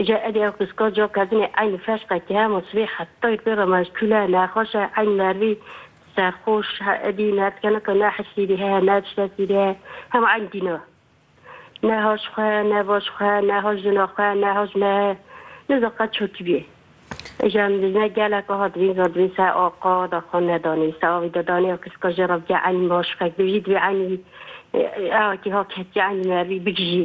Îca edê ew piska ca kerdinê eyn feşqe ke hema sibê hetayî pê re meşkule, nexweş e, eyn merivî serxweş he edî nerdkeneke ne hisî dî heye ne tiştekî dî heye hema eyn dîna. Ne haş xwe heye, ne baş xwe heye, ne haş jina xwe heye, ne haş me heye. Nizan qet ço tî bîyê. Îca em dijne gelek aha divîn zor divîn ser aqa de xwe nedanê, ser avî de danê ew piska jê re bike eyn maşqek bivî divê eynî ew kî ha ketiye eynî merivî bigijî.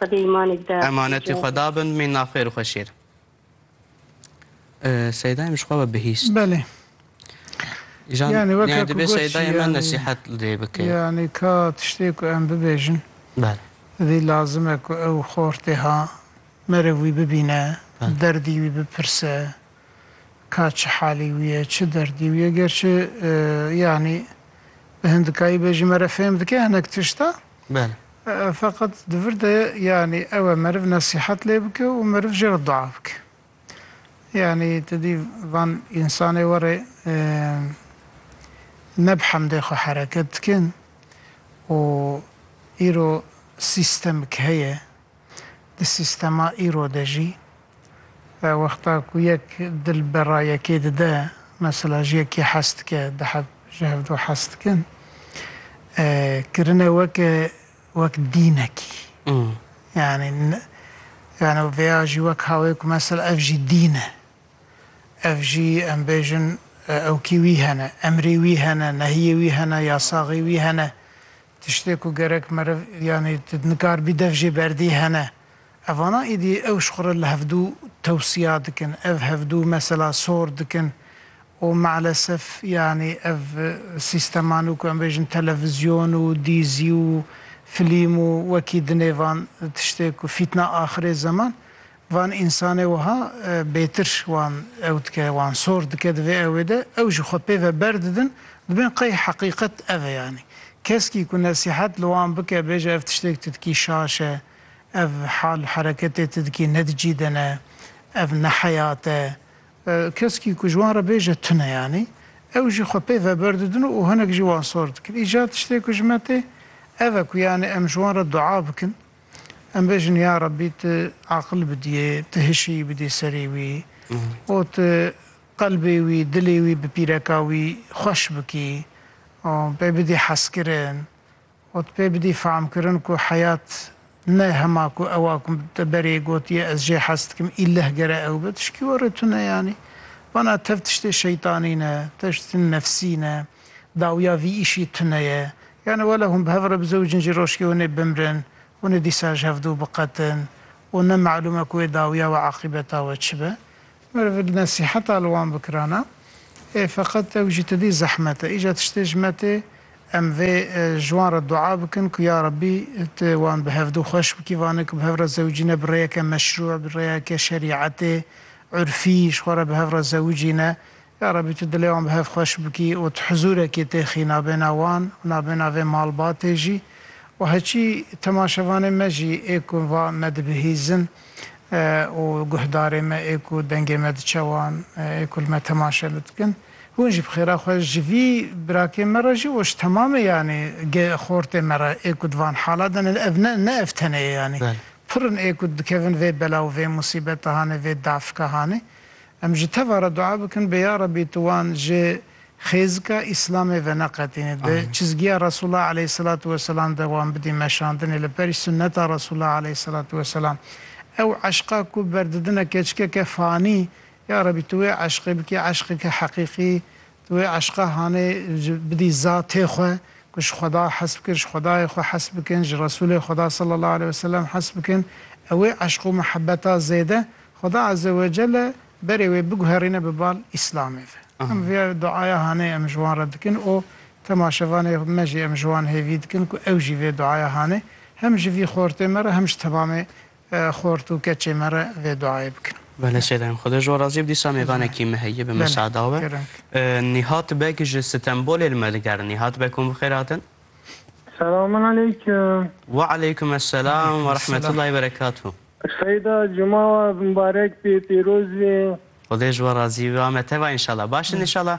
Xwedê îmanê bide. Emanetê xwe dabin mî naxêr û xwe şêr. Seydayê min ji xwe ve bihîst. Belê. Jan Yani weke yani ku dibê goçî seydayê min yani. nesîhet li dê bike. Yani ka tiştê ku em bibêjin Bel. divê lazim e ku ew xortê ha merev wî bibîne, Bel. derdî wî bipirse ka çi halî wî ye, çi derdî wî ye. Gerçi e, yani bi hindikayî bêjî me re fêm dike hinek tişta. Bele. Feqet di vir de yanî ew e meriv nesîhet lê bike û meriv jê re dua bike. Yanî tu dî van însanê were ne bi hemdê xwe hereket dikin û îro sîstemik heye, Di sîstema îro de jî wexta ku yek dil bera yekê dide, mesela ji yekê hez dike, di hev ji hev do hez dikin, kirine weke wek dînekî. Yanî yanî vêya jî wek hawê ku mesela ev jî dîn e. Ev jî em bêjin ewkî wî hene, emrê wî hene, nehiyê wî hene, yasaxê wî hene. Tiştê ku gerek meriv yanî tu nikar bî dev jê berdî hene. Evana êdî ew ji xwe re li hevdû tewsiya dikin. Ev hevdû mesela sor dikin û meelesef yanî ev sîsteman û ku em bêjin televizyon û dîzî û filîm û wekî dinê van tiştê ku fîtna axirê zeman Van însanê wiha bêtir wan ew dike, wan sor dike di vê ewê de, ew ji xwe pê ve berdidin, dibên qey heqîqet ev e yanî. Keskî ku nesîhet li wan bike, bêje ev tiştêk tu dikî şaş e, ev hal û hereketê tu dikî ne di cî de ne, ev ne heyat e, keskî ku ji wan re bêje tu ne yanî, ew jî xwe pê ve berdidin û hinek jî wan sor dikin. Îcar tiştê ku ji me tê, ev e ku yanî em ji wan re dua bikin. Em bêjin ya Rabbî tu aqil bidîyê, tu hişî bidî serê wî û tu qelbê wî, dilê wî bi pîreka wî xweş bikî û pê bidî hezkirin û tu pê bidî fehmkirin ku heyat ne hema ku ew a ku te berê gotiye ez jê hez dikim îlleh gere ew be tişkî werê tune yanî vana tev tiştê şeytanî ne, tev tiştê nefsî ne. Dawiya vî îşî tune ye. Yanî wele hûn bi hev re bizewicin jî rojkê hûn ê bimrin, hûn ê dîsa ji hev dû biqetin û ne melûm e ku wê dawiya we aqîbeta we çi be. Meriv li nesîheta li wan bikirana ê feqet ew jî tedî zehmet e. Îca tiştê ji me tê em vê ji wan re dua bikin ku ya Rebî tu wan bi hev dû xweş bikî. Vanê ku bi hev re zewicî ne bi rêyeke meşrû, bi rêyeke şerîetê, urfî ji xwe re bi hev re zewicî ne. Ya Rebî tu dilê wan bi hev xweş bikî û tu hizûrekê têxî nabêna wan û nabêna vê malbatê jî û heçî temaşevanê me jî ê ku va me dibihîzin û guhdarê me ê ku dengê me diçe wan ê ku li me temaşe li dikin. Hûn jî bi xêra xwe ji vî birakê me re jî û ji temamê yanî xortê me re ê ku di van hala de ne ev ne ev tenê ye yanî pir in ê ku dikevin vê bela û vê musîbeta hanê vê dafika hanê Em ji teva re dua bikin bê ya Rebî tu wan ji xêzika Îslamê veneqetînî, di çizgiya Resûla eleyhîsselatu weselam de wan bidî meşandinê li berî sunneta Resûla eleyhîsselatu weselam. Ew eşqa ku berdidine keçikeke fanî, ya Rebî tu wê eşqê bikî eşqeke heqîqî, Tu wê eşqa hanê ji bidî zatê xwe ku ji Xweda hes bikin, ji Xwedayê xwe hes bikin, ji Resûlê Xweda sallallahu aleyh ve selem hes bikin. Ew ê eşq û mihebeta zêde Xweda azze ve celle berê wê biguherîne bi bal Îslamê ve. Em vê duaya hanê em ji wan re dikin û temaşevanê me jî em ji wan hêvî dikin ku ew jî vê duaya hanê hem ji vî xortê me re hem ji tevamê Xort û keçê me re vê duayê bikin. Bele sêdayem Xwedê ji we razî be dîsa mêvanekî me heye bi misada we. Nîhat Beg ji Stenbolê li me digerin. Nîhat Beg hûn bi xêr hatin. Selamun aleykum. Wa aleykum eselam wa rahmetullahî berekatû. Seyda cuma we mibarek bê pêroz bê. Xwedê ji we razî be me teva înşallah. Baş in înşallah.